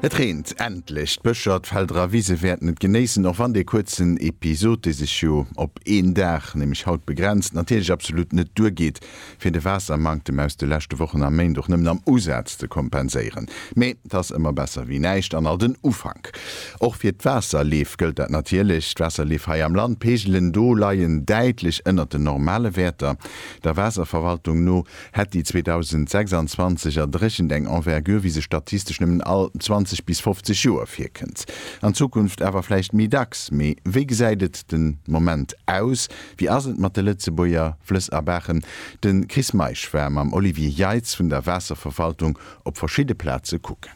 Et reent endlech! D'Bëscher, d'Felder a Wise wäerten et genéissen, och wann dee kuerzen Episod, dee sech jo op een Dag, nämlech haut, begrenzt, natierlech absolut net duergeet, fir de Waassermanktem aus de leschte Wochen a Méint och nëmmen am Usaz ze kompenséieren. Mee 't ass ëmmer besser wéi näischt an alt en Ufank. Och fir d'Waasserleef gëllt dat natierlech. D'Waasserleef hei am Land, d'Peegelen do leien däitlech ënnert den normale Wäerter. Der Waasserverwaltung no Hätt déi 2026 erdréchent eng Envergure, wéi se statistesch nëmmen all 20 bis 50 Joer virkënnt. An Zukunft awer vläicht méi dacks. Mee wéi gesäit et de Moment aus? Wéi ass et mat de Lëtzebuerger Flëss a Baachen? De Chris Meisch war mam Olivier Jeitz vun der Waasserverwaltung op verschidde Plaze kucken.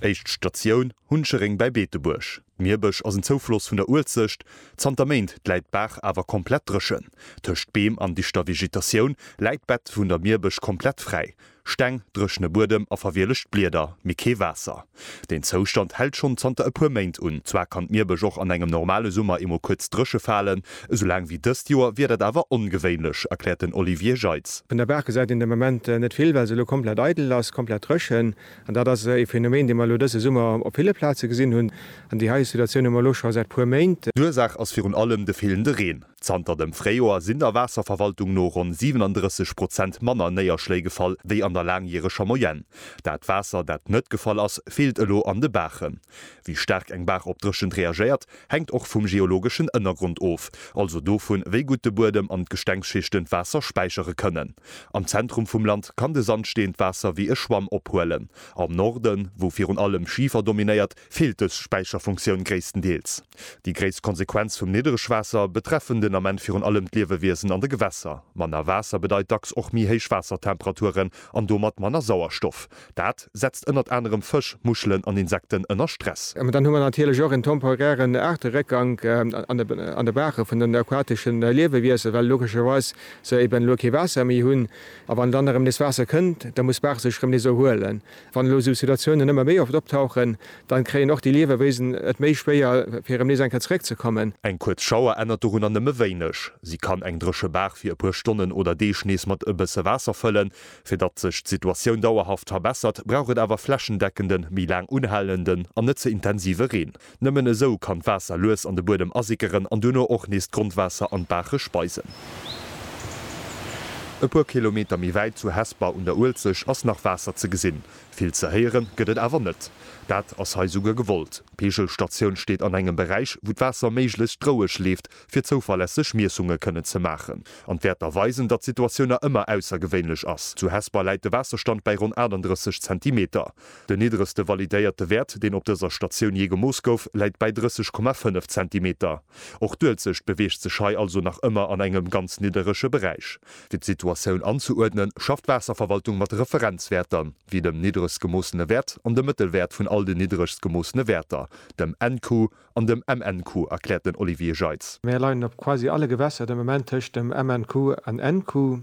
Éischt Statioun, Huncheréng bei Beetebuerg. D'Mierbësch ass en Zoufloss vun der Uelzecht. Zanter Méint läit d'Baach awer komplett dréchen. Tëscht Beem an dichter Vegetatioun läit d'Bett vun der Mierbësch komplett fräi. Steng, dréchene Buedem a verwielegt Blieder, mee kee Waasser. Deen Zoustand hält schonn zanter e puer Méint un. Zwar kann d'Mierbësch och an engem normale Summer eemol kuerz dréche falen, esou laang wéi dëst Joer wier dat awer ongewéinlech, erkläert den Olivier Jeitz. Vun der Baach gesäit een de Moment net vill, well se elo komplett eidel ass, komplett dréchen. An dat ass e Phänomen, dee mer elo dëse Summer op ville Plaze gesinn hunn. An déi hei Situatioun hu mer elo scho säit puer Méint. D'Ursaach ass virun allem de feelende Reen. Zanter dem Fréijoer sinn der Waasserverwaltung no ronn 37 Prozent manner Néierschléi gefall wéi an der laangjäreger Moyenne. Dat Waasser, dat net gefall ass, feelt elo an de Baachen. Wéi staark eng Baach op Dréchent reagéiert, hänkt och vum geologeschen Ënnergrond of, also dovun, wéi gutt de Buedem an d'Gestengsschichten d'Waasser späichere kënnen. Am Zentrum vum Land kann de Sandsteen d'Waasser wéi e Schwamm ophuelen. Am Norden, wou virun allem Schifer dominéiert, feelt dës Späicherfunktioun gréisstendeels. Déi gréisst Konsequenz vum Niddregwaasser betreffen den Ament virun allem d'Liewewiesen an de Gewässer. Manner Waasser bedeit dacks och méi héich Waassertemperaturen an domat manner Sauerstoff. Dat setzt ënnert anerem Fësch, Muschelen an Insekten ënner Stress. Dann hu mer natierlech och en temporären Aarteréckgank an de Baache vun den aquatesche Liewewiesen, well logescherweis se eben elo kee Waasser méi hunn. A wann dann erëm nees Waasser kënnt, da muss d'Baach sech erëm nees erhuelen. Wann elo esou Situatiounen ëmmer méi oft optauchen, dann kréien och déi Liewewiesen et méi schwéier, fir erëm nees eng Kéier zeréckzekommen. Eng kuerz Schauer ännert dorunner nëmme wéineg. Si kann eng dréche Baach fir e puer Stonnen oder Deeg nees mat e bësse Waasser fëllen, Fir datt sech d'Situatioun dauerhaft verbessert, brauch et awer flächendeckende, méi laang unhalenden an net ze intensive Reen. Nëmmen esou kann d'Waasser lues an de Buedem asickeren an duerno och nees d'Grondwaasser an d'Baache speisen. E puer Kilometer méi wäit, zu Hesper un der Uelzecht, ass nach Waasser ze gesinn. Vill ze héiere gëtt et awer net. Dat ass hei souguer gewollt. D'Peegelstatioun steet an engem Beräich, wou d'Waasser méiglechst roueg leeft, fir zouverlässeg Miessunge kënnen ze maachen. An d'Wäerter weisen, datt d'Situatioun nach ëmmer aussergewéinlech ass. Zu Hesper läit de Waasserstand bäi ronn 38 Zentimeter. Den niddregste validéierte Wäert, deen op dëser Statioun jee gemooss gouf, läit bäi 30,5 Zentimeter. Och d'Uelzecht beweegt sech hei also nach ëmmer an engem ganz nidderege Beräich. Fir d'Situatioun anzeuerdnen, schafft d'Waasserverwaltung mat Referenzwäerter, wéi dem niddregst gemoossene Wäert an dem Mëttelwäert vun all den niddregst gemoossene Wäerter, dem NQ, An dem MNQ, erkläert den Olivier Jeitz. Mir leien op quasi alle Gewässer de Moment tëscht dem MNQ an NQ.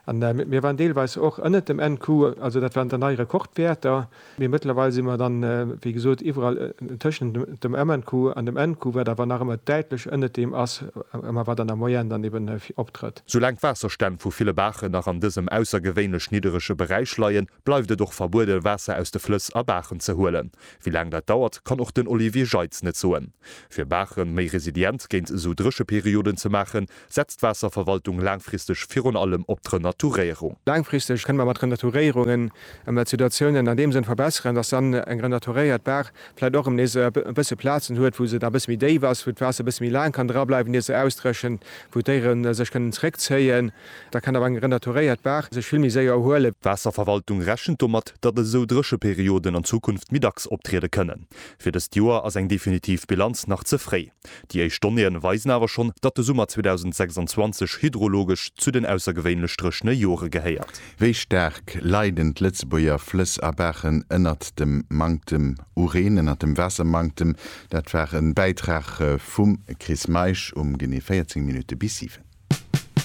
An mir waren deelweis och ënnert dem NQ, also dat waren dann nei Rekordwäerter. Mee mëttlerweil si mer dann, wéi gesot, iwwerall tëschent dem MNQ an dem NQ, wat awer nach ëmmer däitlech ënnert deem ass, ëmmer wat an der Moyenne dann eeben optrëtt. Soulaang d'Waasserstänn vu ville Baachen nach an dësem aussergewéinlech nidderege Beräich leien, bleift et och verbuede Waasser aus de Flëss a Baachen ze huelen. Wéi laang dat dauert, kann och den Olivier Jeitz net soen. Fir Baache méi resilient géint esou Drécheperioden ze maachen, setzt d'Waasserverwaltung laangfristeg virun allem op d'Renaturéierung. Laangfristeg kënne mer mat Renaturéierungen emol d'Situatiounen an deem Sënn verbesseren, datt dann eng renaturéiert Baach vläicht och erëm nees e bësse Plazen huet, wou se da e bësse méi déif ass, wou d'Waasser e bësse méi laang kann drableiwen, ier se ausdréchent, wou d'Déiere sech kënnen zréckzéien. Da kann awer eng renaturéiert Baach sech vill méi séier erhuelen. D'Waasserverwaltung rechent domat, datt esou dréche Perioden an Zukunft méi dacks optriede kënnen. Fir dëst Joer ass eng definitiv Bilanz nach ze fréi. Déi éischt Donnéeën weisen awer schonn, datt de Summer 2026 hydrologesch zu den aussergewéinlech dréchene Jore gehéiert. Wéi staark leiden d'Lëtzebuerger Flëss a Baachen ënnert dem Manktem u Reen, ënnert dem Waassermanktem? Dat war e Bäitrag vum Chris Meisch um genee 14 Minutte bis 7.